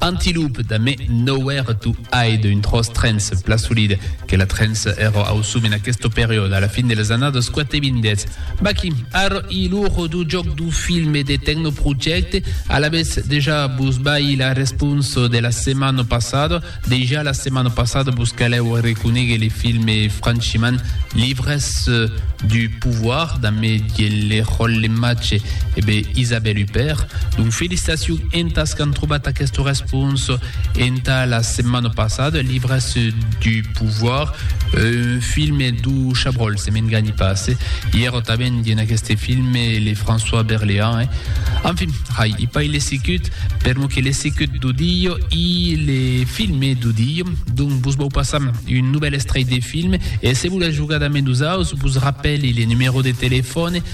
Antiloup da me n'auer tu aid un tros trens pla solid que la trens ero ausum en aquesto period a la fin de las annadas quatevindes. Baquí, arro i lor do joc do film e de tecnoprojecte, alavetz dejà vos baí la responsa de la setmana passada, dejà la setmana passada vos calèu reconéguer le film e franchiment, L'ivresse du pouvoir da me diellerollematge E be, Isabelle Huppert, donc felicitacion entas qu'an trobat aquesta respons enta la setmana passada, Libres du pouvoir, un filme d'u Chabrol, se m'enganhi pas, eh? I èra tanben dins aqueste filme le François Berléand, eh? Enfin, hai, i pai l'he sicut, per mo que l'he sicut d'u Dio, i le filme d'u Dio, donc vos vau passar un novèl estrèit de filme, e se volètz jogar damb nosaus, vos rapèli le numèro de telefòne,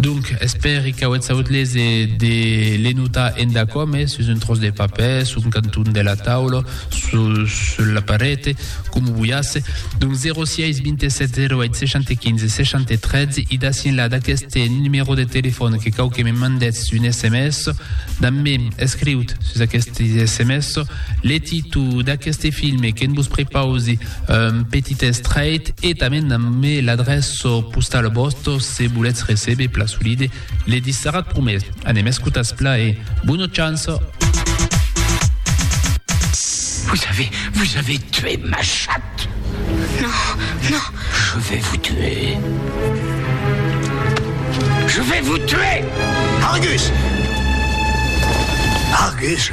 Donc, espèri qu'auetz aut lese de le notar endacò mes sus un tròç de papèr, sul canton de la taula, sul la parete, comu voiasse. Donc, 06 27 08 60 15 60 13, e d'ací enlà d'aqueste numèro de telefòn que cau que me mandètz un sms. Damb-me, escriut sus aqueste sms, le títol d'aqueste filme que'n vos prepausi, un petit estrèit e tanben namme l'adrèça postala vòsta se volètz recebe pla solide le disserat promés. Anem escotas pla e bona chance! Vous avez, vous avez tué ma chatte Non, non Je vais vous tuer Je vais vous tuer Argus Argus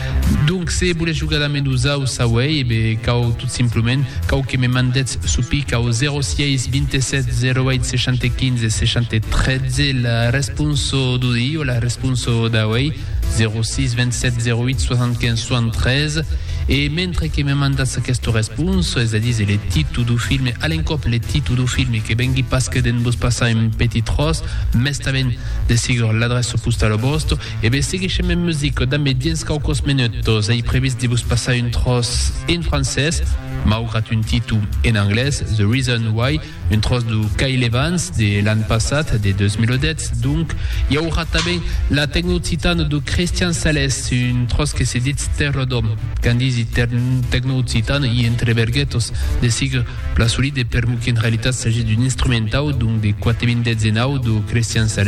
Donc se volètz jogar damb nosau s'auèi, e be cau tot simplement cau que me mandètz sou pic au 06 27 08 65 73 la responso d'odi o la responso d'auèi, 06 27 08 75 73, e mentre que me mandatz aquesta responso, es a díser le titu dau filme, a l'encòp le titu dau filme, que vengui pas que de'n vos passar un petit tròç, mès tanben de sigur l'adrèça postala vòsta, E be seguishem en musica dambe dins quauquos menutos. Ei previst de vos passar un tròç en francés, maugrat un títol en anglés, The Reason Why, un tròç de Kyle Evans de l'an passat, de 2010 donc. I aurà tanben la tecnooccitana de Christian Sales, un tròç que se ditz Terra d'Òm. Quand disi tecnooccitana i entre verguetos de siga plan solide permeu qu'en realitat s'agís d'un instrumentau donc de 4.019 de Christian Sales,